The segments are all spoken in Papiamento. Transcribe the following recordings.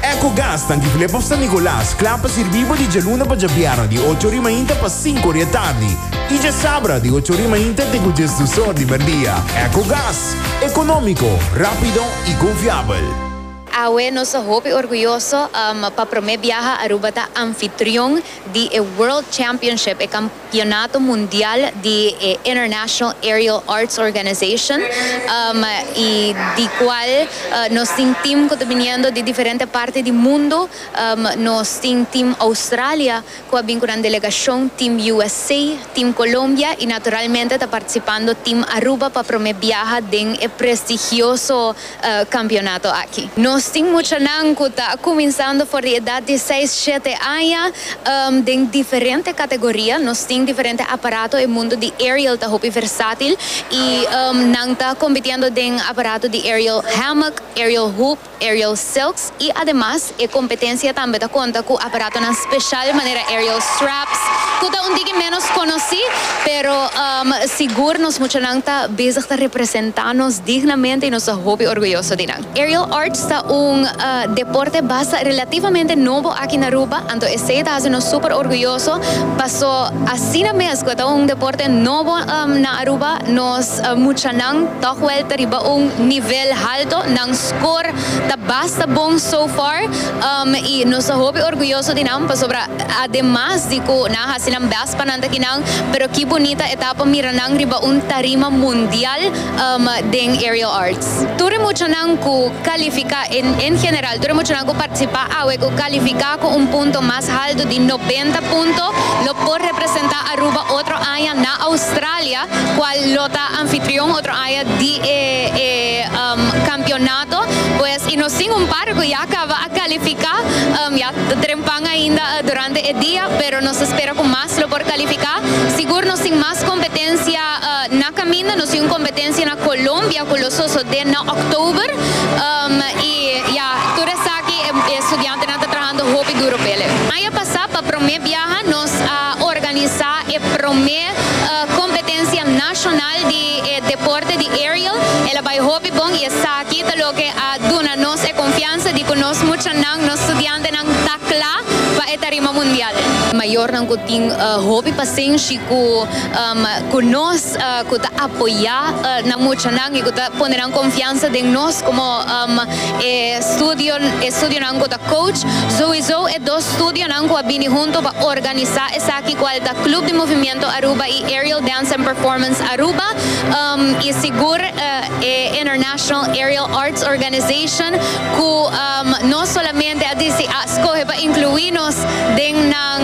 Ecogas ta Antigulé pa San Nicolas, kla pa sirbí bo di djaluna pa djabièrnè di ocho ori mainta pa sinku ori e tardi i djasabra di ocho ori mainta te ku djes dus or di merdia. Ecogas, ekonómiko, rápido i konfiabel. Awe nos ta hopi orguyoso pa promé biaha Aruba ta anfitrion di e World Championship, e. Campeonato Mundial di e International Aerial Arts Organization y di cual nos tin team cu ta biniendo di diferente parti di mundo. Nos tin team Australia cu a bin cu nan delegacion, team USA, team Colombia y naturalmente ta participando team Aruba pa prome biaha den e prestigioso kampionato aki. Nos tin muchanan ku ta kuminsando for di edat di seis, shete aña den diferente kategoria. Nos tin diferente aparato, e mundu di aerial ta hopi versatil i nan ta kompitiendo den aparato di aerial hammock, aerial hoop, aerial silks. I ademas e kompetensia tambe ta konta ku aparatonan speshal manera aerial straps ku ta un tiki ménos konosí, pero sigur nos muchanan ta bezig ta representá nos dignamente i nos ta hopi orguyoso di nan. Aerial arts ta un deporte basa relativamente nobo aki na Aruba, anto esei ta hasi nos super orguyoso paso asina mes ku e ta un deporte nobo na Aruba nos muchanan tòg wèl ta riba un nivel halto, nan skor ta basta bon so far i nos ta hopi orguyoso di nan pasobra ademas di ku nan a hasi nan bèst pa nan ta ki nan pero ki bunita etapa mira nan riba un tarima mundial den Aerial Arts. Tur e muchanan ku kalifiká en general tur e muchanan ku partisipá awe ku kalifiká ku un punto mas haltu di nobenta punto lo por representá Aruba otro aña na Australia. cual lo ta anfitrion otro aña di e e um, campeonato, pues y nos tin un par cu ya caba a califica, um, ya ta dren pan ainda uh, durante e dia, pero nos ta spera cu mas lo por califica. Sigur nos tin mas competencia uh, na caminda, nos tin un competencia na Colombia cu lo sosode na October, um, y ya, tur esaki e, e studiantenan ta trahando hopi duro p'ele. Aña pasa pa prome biaha nos a organisa e prome. competencia nacional di e deporte di aerial el a bay hopi bon y esaki ta loke a duna nos e confianza di cu nos muchanan, nos studiantenan ta cla pa e tarima mundial. Mayornan cu tin hopi pasenshi cu cu nos, cu ta apoya nan muchanan y cu ta pone nan confianza den nos como. e studio e studionan ku ta coach, souiso e dos studionan ku a bini hunto pa organisa esaki kual ta Club di Movimiento Aruba i Aerial Dance and Performance Aruba um i sigur e International Aerial Arts Organization ku um no solamente a disi a skohe pa inkluí nos den nan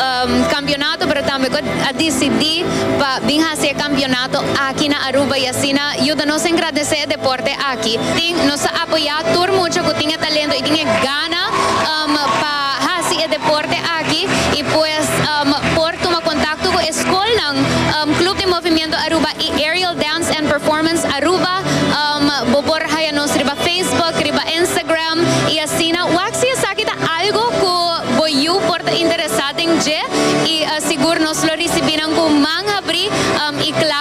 um kampionato pero tambe ku a disidí pa bin hasi e kampionato aki na Aruba y asina yuda nos engradece e deporte aki. Tin, nos a apoya tur mucha cu tin e talento y tin e gana um pa haci e deporte aki y pues um por tuma contacto cu e scolnan um Club di Movimiento Aruba y Aerial Dance and Performance Aruba um bo por haya nos riba Facebook, riba Instagram y asina wak si esaki ta algo cu bo yu por ta interesa den dje y sigur nos lo ricibinan cu man habri um y claro.